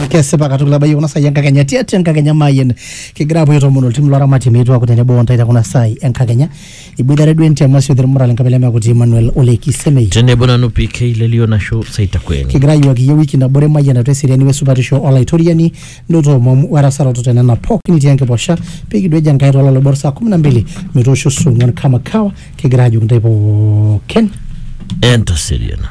kesipa katukul abayie kuna saai enkakenya tiatua enkakenya maayen kigira apuo aitoomon oltim loramatie meetuaku tenebo ontae te kuna saai enkakenya iboitare duo entiama sio termura lenkabila mekuti Emmanuel Ole Kisemei tenebo nanu PK lelio nashu saitakweni kigira ayiwaki iyie wiki nabore mayian atua eseriani wesupatisho olaitoriani nitoomom werasaroto tenena pookin itii enkiposha pikidueja Enkai tololoibor saa kumi na mbili metoosho song'uan kama kawa Kigira ajoki ntae pookin. Entaseriana.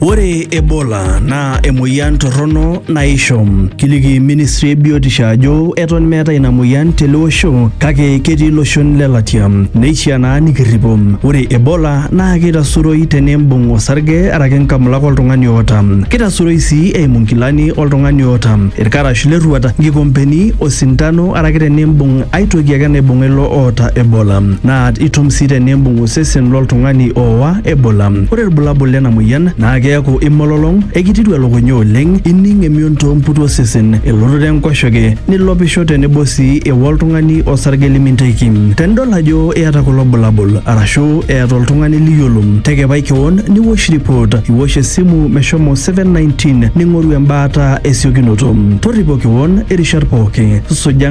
Ore Ebola naa emoyian torrono naisho. Kiliki ministry e biotisho ajo eton meeta ina moyian tele osho kake ketii iloshon le latia. Neishiaa naa nikirripo. Ore Ebola naa keitasuroi teneimbung osarge araki nkamulak oltung'ani oota. Keitasuroi sii eimu nkilani oltung'ani oota, ilkarash le rruat, nkikompeni, osintano araki teneimbung Ai toki ake naibung'a ilo oota Ebola, naa itum sii teniimbung osesen lo ltung'ani oowa Ebola. Ore ilbulabul lena moyian naa keaku imololong, eikitiru elukunya oleng, ining emion too mputu osesen, elototo enkoshoke, nilopisho tenebo sii ewa oltung'ani osarge limintaiki. Tenidol ajo iata kulo bulabul arashu eeta oltung'ani liyiolo, tekepai kewon niwosh ripot, iwosh esimu meshomo 719 ning'oru embaata esiokinoto. Torripo kewon irishat pooki. Suja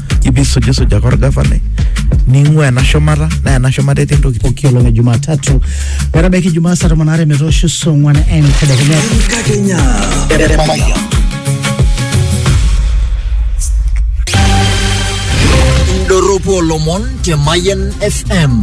ibisujisuja ake orgavanai ning'ua ena shumata naa ena shumata etii ntokitin pooki olong e Jumatatu metabaiki Ijumaa saa tomon aare metoosho saa ong'wan entedekenya. Enkakenya. Indorropu olomon te Mayian FM.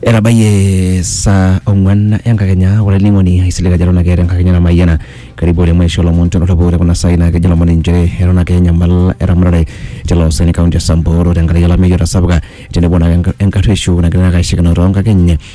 etabayie saa ong'uan enkakenya ore olainining'oni aisilig ajo eton ake eeta enkakenya namayiana karibu oleng maisho lomon tolorrobo ore kuna saai naa kejo lomon inchere eton ake enyamal eramatare tilo saen kaunti e samburu tenkaraki olameyu otasapuka tenebo naake enka- enkarrueshu nagira ake aishikino tonkakeny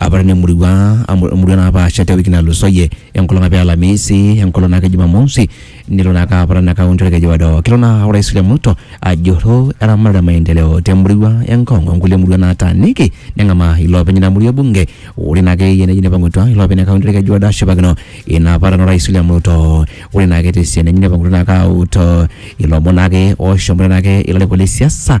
Apa tena murua amu emurua napaasha te wiki natulusoyie enkolong apa e Alamisi enkolong naake Jumamosi nelo naake apara ina kaunti olkeju odo. Kelo naa Orais William Ruto ajurru eramatare e maendeleo te murua e Ngong o nkulie murua nataaniki neng'amaa iloopeny ina murua e bunge. Ore naake eyia neji neipang'utua iloopeny le kaunti olkeju odo ashipakino ina aparan o Rais William Ruto. Ore naake te sian enye neipang'utua naake aut ilomon naake oshomoita naake ilarikok le siasa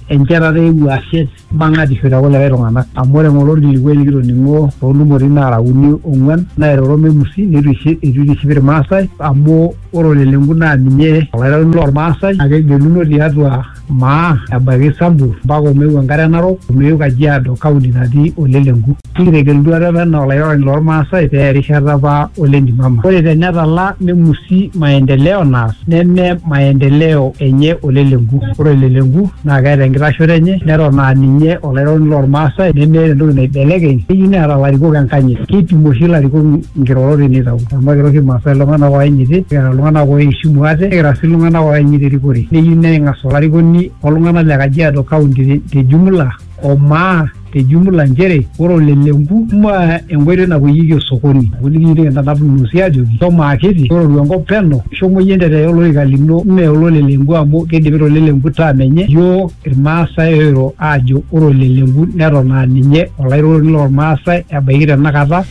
Enchetata e wuasie bang'atisho te kulikae tung'ana. Amu ore ng'ole olkilikuai likitoning'o too ntumoritin naara uni ong'uan naairoro Memusi neitu eitiship Ilmaasai amu ore olelenku naa ninye olairoroni loo Lmaasai naa kegeluno tiatua Maa ebaiki Sambur mpaka Omeu enkare Narok, Omeu Kajiado, kaunti natii olelenku. Etegelutua apa enaa olairoroni loo Lmaasai pee eya erishata apa o Lentimama. Ore te netala nemusi maendeleo naas neme maendeleo enye o le Lenku. Ore o le Lenku naa keeta enkitashoto enye neton aa ninye olairoroni loo Lmaasai nemeeta entoki naibelekeny. Keyieu neeta larikok enkanyit. Keipim oshi larikok nkirorot te neitau amu ekira oshi Lmaasai iltung'ana ooyanyiti nikira iltung'ana ooishimu ate nikira sii iltung'ana ooyanyit erikore. Neyieu neng'as olarikoni o ltung'ana le Kajiado County te jumula o maa. te jumla nchere ore olelenku maa enkoitoi napuoyieki osokoni. Ore iyie nikintanap ilng'uosi aajoki shomo akiti tororu enkop peno, shomo iyie entetee olorika lino mme ololelenku amu keidipita olelenku term enye. Iyiook Ilmaasai oiro aajo ore olelenku neton aa ninye olairukoni loo Lmaasai ebaiki tena kata.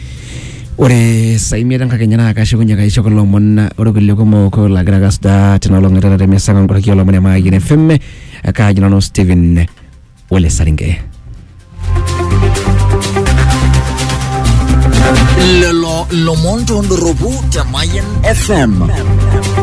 Ore saa imiet enkakenya naa kashukunye kaisho kulo omon olkulie kumok laagira ake asujaa tina olong e taata te mesa oo nkoraki oo lomon e Mayian FM. Kaaji nanu Steven. ole Saringe. lelo lomon tondoropu te Mayan FM.